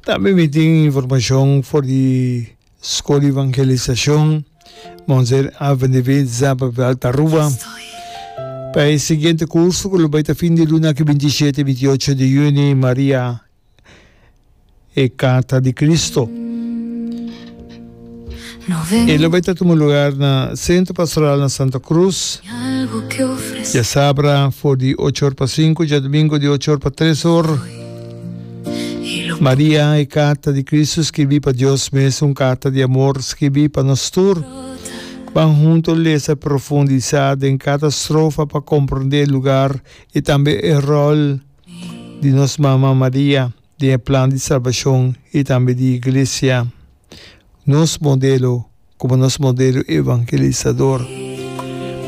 Tambe mi tin informacion for di School Evangelisacion Monzeri Avenue Zapa Veld Aruba pa e siguiente curso cu lo bay ta fin di luna aki binti y shete y binti y ocho di juni Maria e Carta di Cristo. E lo bai ta tuma lugar na Centro Pastoral na Santa Cruz, diasabra for di ocho or pa sinku, diadomingo di ocho or pa tres or. Maria, e carta di Cristo skirbi pa Dios mes, un carta di amor skirbi pa nos tur. Ban hunto lesa e profundisa den cada strofa pa comprende e lugar y tambe e rol di nos Mama Maria den e plan di salbacion y tambe di Iglesia. nos modelo, como nos modelo evangelisador.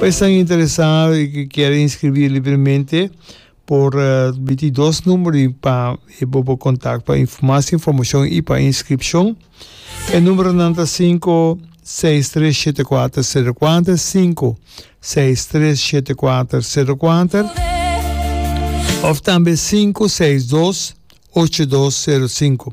Pa esnan interesá i ke kier inskribí libremente, por miti dos numero pa e bo por kontak pa mas informashon i pa inskripshon. E numeronan ta sinku seis tres shete kuater sero kuater, sinku seis tres shete kuater sero kuater, òf tambe sinku seis dos ocho dos sero sinku.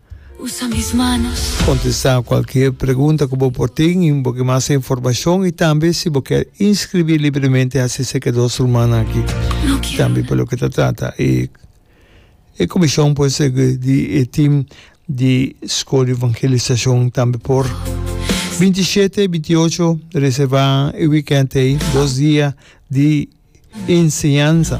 Kontestá kualker pregunta ku bo por tin i un poki mas di informashon i tambe si bo kèr inskribí libremente hasi serka di dos rumannan aki. Tambe pa loke ta trata e e komishon por segue di e tim di Skol di Evangelisashon tambe por. Binti shete i binti ocho reservá e wikènt ei dos dia di enseñansa.